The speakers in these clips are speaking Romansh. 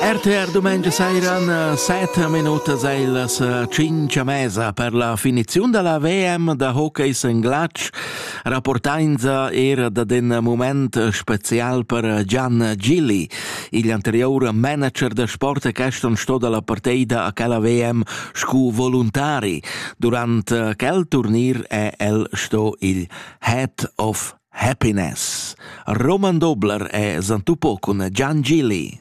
RTR Dumengia sairan 7 minutas e las 5 a mesa per la finiziun della VM da hockey in glatsch rapportainza era da den moment spezial per Gian Gilli, il anterior manager da sport e questo sto dalla partida a quella VM scu voluntari. Durante quel turnir è el sto il Head of Happiness. Roman Dobler è zantupo con Gian Gilli.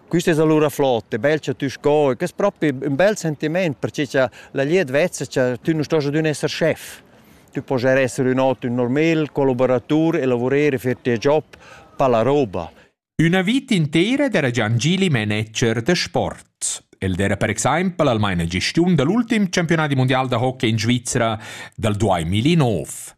Questa es allura flot e bel cha tü sco, e que es propi ün bel sentiment, perche cha la glieud vezza cha tü nu stost adüna esser schef. Tü pojas esser ün ot ün normal collaboratur e lavurer e fer tia job, pa la roba. Üna vita intera d'era Giangili manager de sport. El era per exempel almain a gestiun dall'ultim campionat mondial da hockey in Svizzera dal 2009.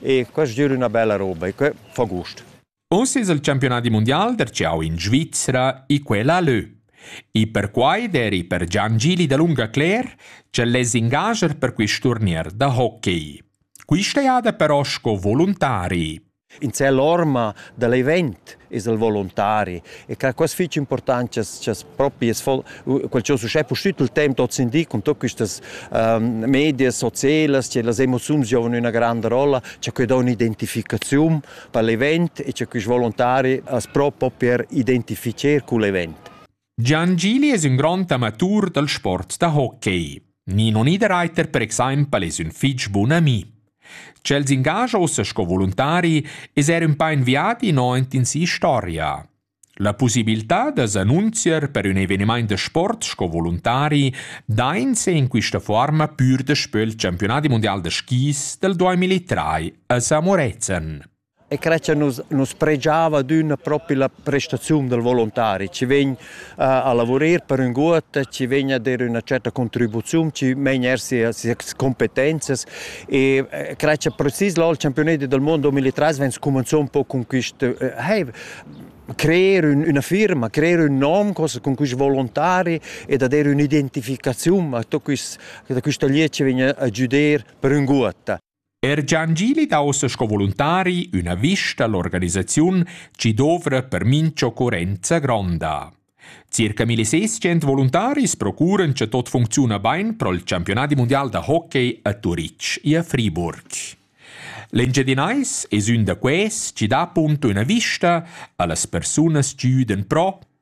e quest giür üna bella roba e que fa gust. Uss es il campiunadi mundial der ciao in Svizzera e quella lö. E perquai deri per Gian Gili da lunga Cler, che les ingager per quist turnier da hockey. Quista jada però sco volontari. In cell orma da l'event es el volontari e che quas fich importantias chas propi es quel cha uschè pustüt il temp hoz in di con tuot quistas medias socielas che las emoziuns giovan üna granda rolla cha que dà ün'identificaziun per l'event e cha quist volontari as pro per identificher cul event. Gian Gili es ün grond amatur dal sport da hockey. Nino Niederreiter per exaimpel es ün fich bun ami. Ch'el s'ingascha ussa sco voluntari es eir ün pa in viadi aint in si'storia. La possibilità da s'annunzier per ün evenimaint da sport sco voluntari dainse in quista fuorma pür daspö il Championadi mundial da skis dal 2003 a Samorezen. E cre cha nus nus predgiava adüna propi la prestaziun dal volontari, chi vegn uh, a lavurer per ün guot, chi vegn a der üna certa contribuziun, chi main er sia sias competenzias e cre cha precis lò il championet dal mondo 2003 vegn scumanzò un po con quist uh, hey, creer un, una firma, creer un nom con questi volontari e da dare un'identificazione a tutto questo, da questo lied che viene a giudere per un guata. Er Gian Gili da ussa sco voluntari üna vista all'organisaziun chi dovra per mincha occurrenza gronda. Circa 1600 voluntaris procuran cha tot funcziuna bain pro'l campionadi mundial da hockey a Turitg e a Friburg. L'Engiadinais es ün da quais chi dà appunto üna vista a las persunas chi üden pro